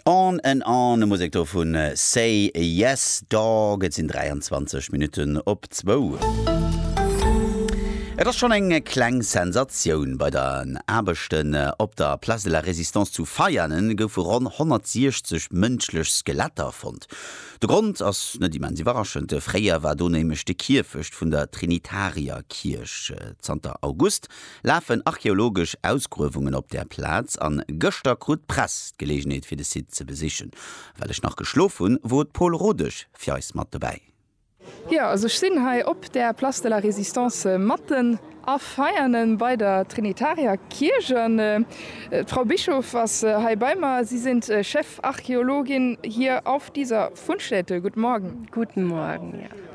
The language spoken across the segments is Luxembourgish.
On and On, d'Musek do vu Say Yes Dog. Et sinn 23 Minutten op zwou. Et ass schonn eng kleng Sensatioun, Bei den Aarbechten op der Place de la Résistance zu Veianen goufe ronn 160 mënschlech Skeletter fonnt. De Grond ass net immens iwwerraschend, Fréier war do nämlech de Kierfecht vun der Trinitarierkierch. Zanter August lafen archeologesch Ausgruewungen op der Plaz an gëschter krut d'Press d'Gelegenheet fir de Site ze besichen. Well ech nach geschlof hunn, wor d'Pole Rodesch fir eis mat dobäi. Jo, also ech sinn hei op der Place de la Résistance matten a feierne bei der Trinitarier-Kierch an d'Frau Bischof ass hei bei mer, si sind Chefarcheologin hier auf dieser Fundstätte. Guten Morgen. Guten Morgen, ja.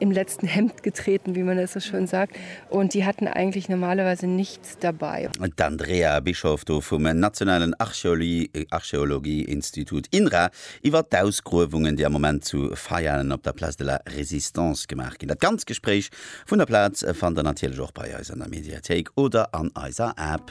im letzten Hemd getreten, wie man es so schön sagt, und die hatten eigentlich normalerweise nichts dabei. D'Andrea Bischoff do vum nationalen Archeologieinstitut INRA iwwer d'Ausgruewungen, déi am Moment zu Veianen op der Place de la Résistance gemaach ginn. Dat ganz Gespréich vun der Plaz fannt der natierlech och bei eis an der Mediathéik oder an eiser App.